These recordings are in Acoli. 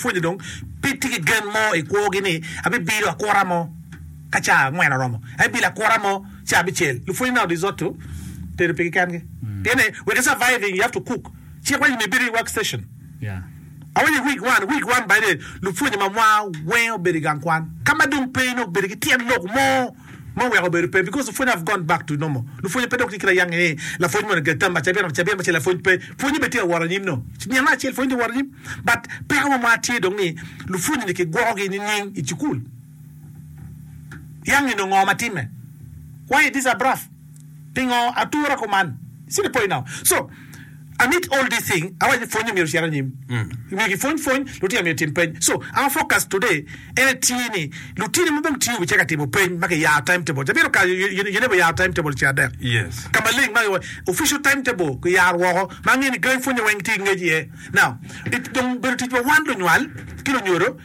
Pwonye dong pe tye ki gen mo i kwogi ni abibido akura mo ka ca angwen oromo. Abibido akura mo ca abicel. Lupwonye neno risotto tedo pigi kengi. Pien ni wek i surviving you have to cook. Cik waco ni ibedi i work station. Awaco i week one, week one baide lupwonye mamwa weng obedo i gang kwan. Ka ma dong pe inongo obedo ki tyen lok mo. ma oweko obedo pe because pwonye have gone back to normal lupwonye pe dok tye kit ayange ni lapwony moni oger tam acabi eno acabi eno ce lapwony pe pwonye bene tye aworo anyim no nino acel pwonye tye aworo anyim but peko wa mwar tye dong ni lupwonye ni kigwoko gi nining i cukul yang eno ngo matime why is this abruff. Pingo atura kuman? See the point now. So, amid all these thing, awaco ni pwonye myero ocit anyim. Myero kipwony pwony, lutino myero etim peny. So, our focus today en etye ni lutino ma dong tye obi caka timo peny ma kiyaro time table. Ca bino kare you, you never yaro time table ce adek. Yes. Ka maleng ma official time table kiyaro woko ma angeyo ni gangi pwonye weng tye ki ngec iye. Now, it dong obedo tic pa wan lunywal ki lunyodo,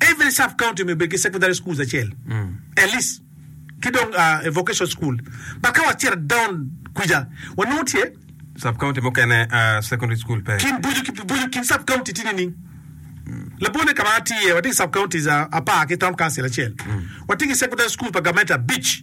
Every sub county me bed ki secondary schools acel at least ki dong a vocation school but ka wacito down kwica wanongo tye Sub county mukene ah, secondary school pe. kin bojo ki bojo kin sub county tye nining? Labone ka ma atye iye watye ki sub counties ah, apar ki town council acel watye ki secondary school pa gamente abic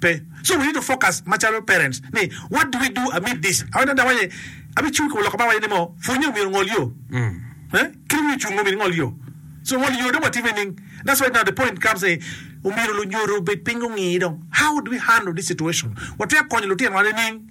Pe. So we need to focus macalo parents ni what do we do amid this? Awene dok waye abi cung kor loko ba waye ni mo pwonye omyero ngol yo. Eh? Kit omyero cung omyero ingol yo. So ngol yo dong watimo nining? That's why now the point comes ni omyero lunyodo obed piny gungi dong how do we handle this situation? Watwero konyo lutinwa nining?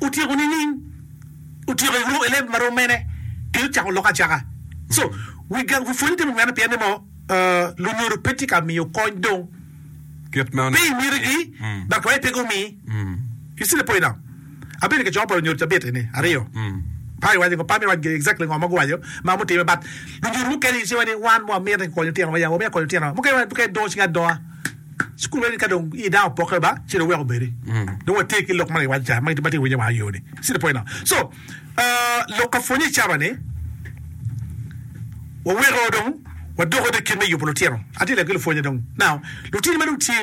Otyeko nining? Otyeko i room eleb marom mene ki cako lok acaka. So wi gang wi pwonye timo mene pien ni mo lunyodo pe tye ka miyo kony dong kit ma pe imiti gi dok waye pe gumi. You see the point now? Abedo i kecoko pa lunyodo cabit eni aryo pa iwaco ngo pa me waco exactly ngo ma guwaco ma mutime but lunyodo mukene you see wai ni wan mo amiti konyo tino wa ya wa mito konyo tino wa mukene wa dong cing adonga. Cukulu eni ka dong idang opoke ba ci dong weko obedi dong watye ki lok ma giwaco ca ma tye winye wa ayo ni see the point now so uh, lok ka pwonye caba ni waweko dong wadoko dong i kit me yubo lutino atye lego ki lupwonye dong now lutini ma dong tye ni